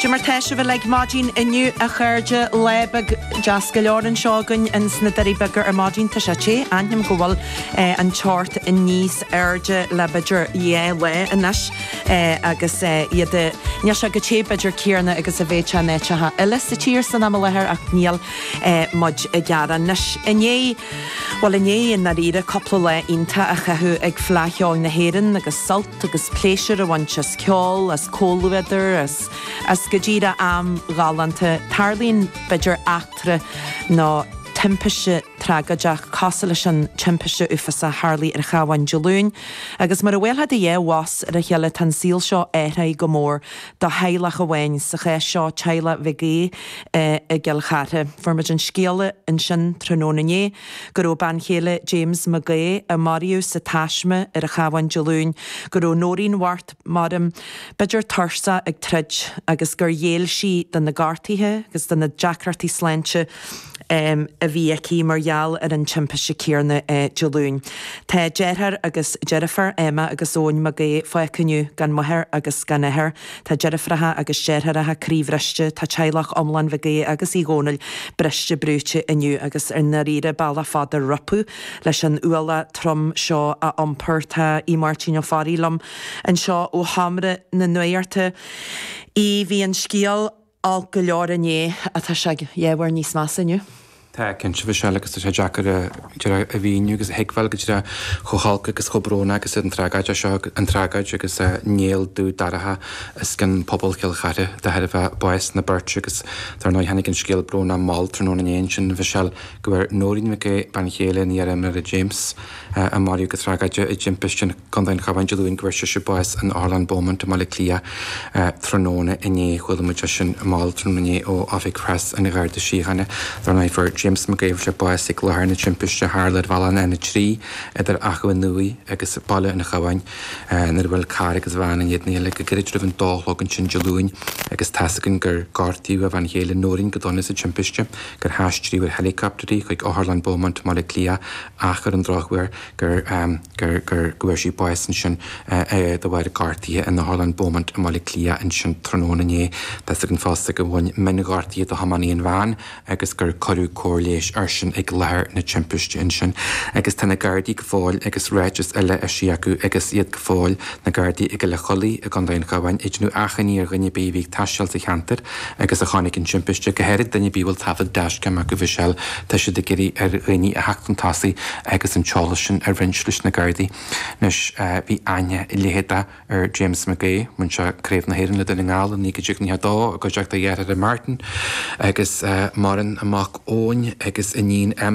Goidé mar tá sibh uilig maidin inniu a chairde lá beag deas go leor anseo againn in sna Doirí Beaga ar maidin tá sé te aithním go bhfuil an teocht níos airde le b'fhéidir dhá lá anois agus é ag níl sé chomh te b'fhéidir céanna agus a bheifeá in áiteacha eile sa tír san am i láthair ach níl muid ag gearán anois inné bhuel inné i ndáiríre cúpla lá iontach á chaitheamh ag Fleadh Cheoil na hÉireann agus sult. agus pléisiúr a bhaint as ceol, as comhluadar, as, as go díreach am ghalánta. Tarlaíonn, b'fhéidir, eachtra nó timpiste tragóideach cosúil leis an timpiste uafásach a tharlaigh ar an Chabhán Dé Luain, agus mar a bhuailfeá do dhá bhos ar a chéile tá an saol seo athraithe go mór do theaghlach amháin, sa chás seo teaghlach Mhic Aoidh i gCill Chartha. Fuair muid an scéala ansin tráthnóna inné. go raibh bean chéile James Mhic Aoidh, a maraíodh sa taisme ar an Chabhán Dé Luain, go raibh Nóirín nach maireann, b'fhéidir tuirseach ag troid, agus gur ghéill sí do na gortuithe agus do na deacrachtaí sláinte a bhí aici mar gheall ar an timpiste céanna Dé Luain. Tá deartháir agus deirfiúr Emma agus Eoin Mac Aoidh fágtha inniu gan máthair agus gan athair. Tá deirfiúracha agus deartháireacha croíbhriste, tá teaghlach iomlán Mhic Aoidh agus Uí Dhomhnaill briste brúite inniu agus i ndáiríre bealach fada rompu leis an ualach trom seo a iompar. Tá Aodh Máirtín Ó Fearraigh liom anseo ó sheomra na nuachta. A Aodh, bhí an scéal. Olc go leor inné ach tá sé ábhar níos measa inniu. Tá cinnte a Mhichelle agus tá sé deacair a a mhíniú agus a thuigbheáil goidé chomh holc agus chomh brónach agus atá an tragóid é seo, an tragóid agus an néal dubh dorcha os cionn pobal Chill Chartha de thairbhe báis na bpáirtí agus dar ndóigh tháinig an scéal brónach mall tráthnóna inné ansin a Mhichelle go bhfuair Nóirín Mhic Aoidh, bean chéile an fhir nach maireann James, a maraíodh go tragóideach i dtimpiste na. Contae an Chabháin Dé Luain go bhfuair sise bás in Otharlann Beaumont i mBaile Átha Cliath tráthnóna inné. Chuala muid é sin mall tráthnóna inné ó Oifig Preas an Gharda Síochána. Dar ndóigh fuair James Mac Aoidh bás ag láthair na timpiste a tharla ar bhealach an N3 idir Achadh an Iúir agus Baile an Chabháin nuair a bhuail carr agus veain faoina chéile go gairid roimh an dó a chlog ansin Dé Luain agus tá a fhios againn gur gortaíodh a bhean chéile Noreen go dona sa timpiste, gur haistríodh ar heilicopter í chuig Otharlann Beaumont i mBaile Átha Cliath ach ar an drochuair, gur, gur, gur, go bhfuair sí bás ansin de bharr gortaithe in Otharlann Beaumont i mBaile Átha Cliath ansin tráthnóna inné. Tá a fhios againn fosta gur bhain mionghortaithe do thiománaí an veain agus gur cuireadh cóir leighis airsean ag láthair na timpiste ansin. Agus tá na Gardaí go fóill agus ráiteas eile eisithe acu agus iad go fóill, na Gardaí i gCoill an Chollaigh i gContae an Chabháin, ag déanamh achainí ar dhuine ar bith a bhí ag taisteal sa cheantar, Agus a chonaic an timpiste, go háirid duine ar bith a bhfuil taifead dashcam acu b'fhéidir, tá siad ag iarraidh ar dhaoine a theacht chun tosaigh agus an t-eolas sin a roinnt leis na Gardaí. Anois, bhí aithne leitheadach ar James McHugh, bhain sé Craobh na hÉireann le Dún na nGall i 1992 i gcuideachta a dheartháir Martin agus maireann a mhac Eoin agus a iníon Emma,